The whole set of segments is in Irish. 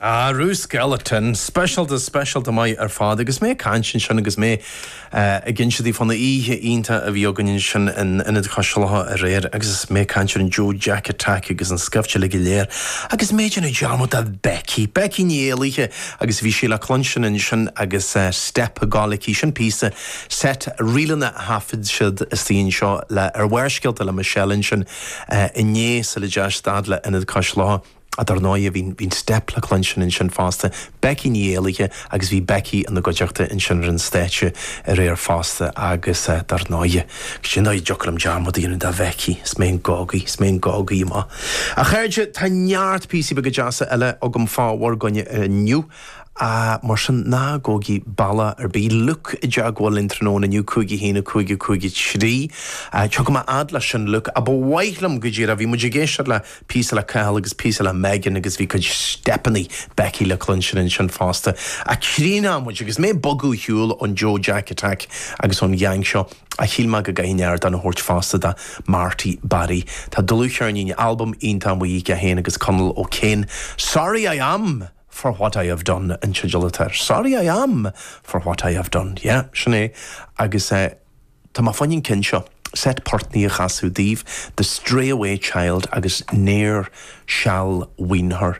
Arú, is galánta. Speisialta, speisialta maith ar fad. Agus mé ag caint ansin agus mé ag inse di fán oíche iontach a bhí againn ansin in Ionad Cois Locha aréir agus mé ag caint ar an Joe Jack Attack agus an scaifte uilig go léir agus mé ag déanamh dearmad ar Becky, Becky Ní Éallaithe agus bhí sí le cluinstin ansin agus steip ag gabháil aici. Sin píosa, seit, ríleanna a thaifead siad istigh anseo le, ar Bharrscéalta le Michelle ansin. inné sula deachaidh siad le Ionad Cois Locha. Dar ndóigh bhí an steip le cluinstin ansin fosta, Becky Ní Éallaithe agus bhí Becky ina gcuideachta ansin ar an stáitse aréir fosta agus dar ndóigh, cad é an dóigh a dtiocfadh liom dearmad a dhéanamh de Bhecky is mé an gogaí, is mé an gogaí, a chairde tá neart píosaí beaga deasa eile agam fá bhur gcoinne inniu. Ah, mar sin, ná gabhaigí bealach ar bith. Luke i dteagmháil linn tráthnóna inniu, cúig a haon a cúig a cúig a trí. Ah, seo, go raibh maith a'd leis sin, Luke. Ah, ba mhaith liom, go díreach. Bhí muid ag éisteacht le píosa le Cathal agus píosa le Megan agus bhí cuid steipeannaí Becky le cluinstin ansin fosta. Ah, críochnóidh muid agus mé ag bogadh ar shiúl ón Joe Jack Attack agus ón gheaing seo. Ah, shíl mé go gcaithfinn ardán a thabhairt fosta do Marty Barry. Tá dlúthcheirnín, albam iontach amuigh aige féin agus Conal O'Kane. Sorry I Am! for what I have done an teideal atá air. Sorry I am for what I have done. Yeah, sin é. Agus eh, tá mé chun an ceann seo, seit portannaí a chasadh daoibh, The Stray Away Child agus Ne'er Shall Wean Her.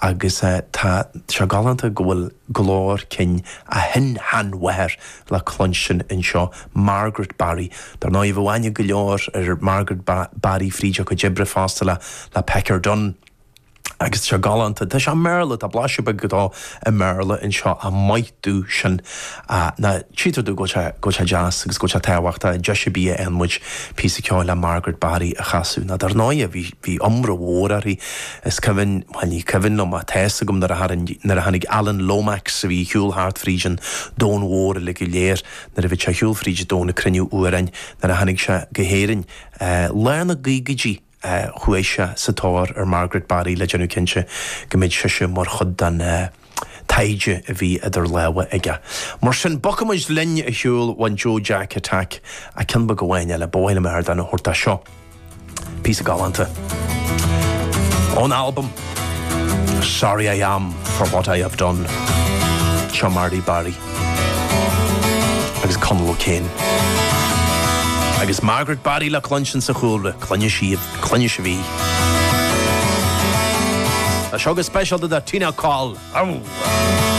Agus eh, tá sé galánta go bhfuil glór cinn a shin-sheanmháthair le cluinstin anseo, Margaret Barry. Dar ndóigh, bheadh aithne ag go leor ar Margaret Barry fríd a cuid oibre fosta le Pecker Dunne. Agus tá sé galánta. Tá sé i mBéarla, tá blaiseadh beag dó i mBéarla anseo ach maith domh sin. Ná tchítear domh go bhfuil sé, go bhfuil sé deas agus go bhfuil sé tábhachtach. Deis ar bith a fhaigheann muid píosa ceoil le Margaret Barry a chasadh, ná dar ndóighe bhí, bhí iomrá mór uirthi. Is cuimhin, bhuel ní cuimhin liom ach tá's agam nuair a tharraing, nuair a tháinig Alan Lomax a bhí ar shiúl thart fríd an domhan mhór uilig go léir, nuair a bhí sé ar shiúl fríd an domhan ag cruinniú amhráin, nuair a tháinig sé go hÉirinn, lár na gcaogaidí. chuaigh sé sa tóir ar Margaret Barry le déanamh cinnte go mbeadh sise mar chuid den taighde a bhí idir lámha aige. Mar sin, bogfaidh muid linn ar shiúl ón Joe Jack Attack ach ceann beag amháin eile. Ba mhaith liom ardán a thabhairt dó. Seo píosa galánta ón albam Sorry I Am For What I Have Done. Seo Marty Barry. agus Conal O'Kane agus Margaret Barry le cluinstin sa chúlra, cluinfidh sibh, cluinfidh sibh í. Tá seo go speisialta do Tina Coll. Aú!